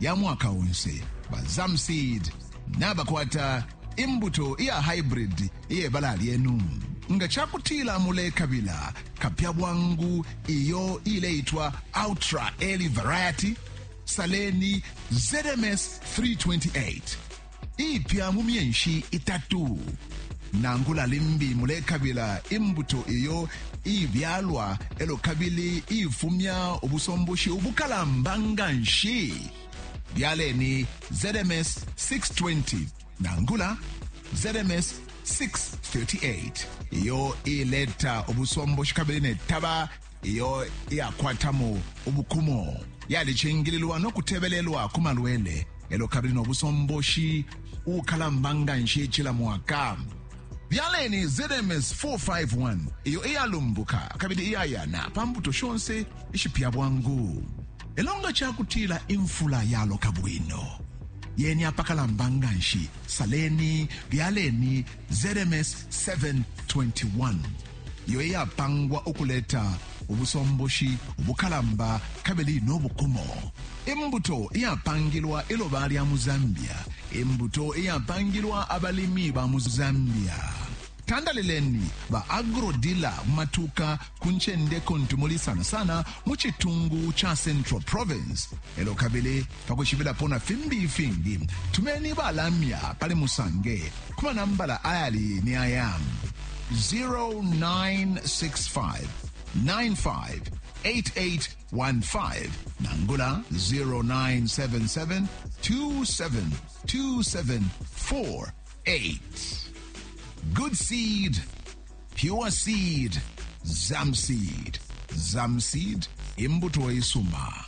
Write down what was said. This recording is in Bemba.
ya mwaka onse ba zamseed nabakwata imbuto iya hybrid iyebala lyenu nga cakutila mulekabila kapya bwangu iyo ileitwa ultra early variety saleni zms 328 iipya mu myenshi itatu. Nangula limbi mulekabila imbuto iyo iibyalwa elo kabili iifumya ubusomboshi ubukalamba nga nshi, byaleni ZMS 620 nangula ZMS 638 iyo iileta ubusomboshi kabili ne taba iyo iyakwatamo ubukumo yalicingililwa no kutebelelwa ku malwele elo kabili no busomboshi ukalamba nga nshi cila mwaka byaleni zms 451 iyo iyalumbuka kabili iyayana pa mbuto shonse ishipya bwangu elo nga cakutila imfula yaloka bwino yeni apakalamba nga nshi saleni byaleni zms 721 iyo iyapangwa ukuleta ubusomboshi ubukalamba kabili no bukumo. Imbuto iyapangilwa iloba lya mu Zambia. Imbuto iyapangilwa abalimi ba mu Zambia. Tandalileni ba agrodila mu matuka ku ncende kuntu muli sana sana mu citungu ca Central Province elo kabili Pa kwishibilapo na fimbi ifingi, tumeni ba lamya pali Musange ku manambala ayali ni aya, 0965 958815 nangula 0977 2727488. Good seed, pure seed, Zamseed. Zamseed, imbuto isuma.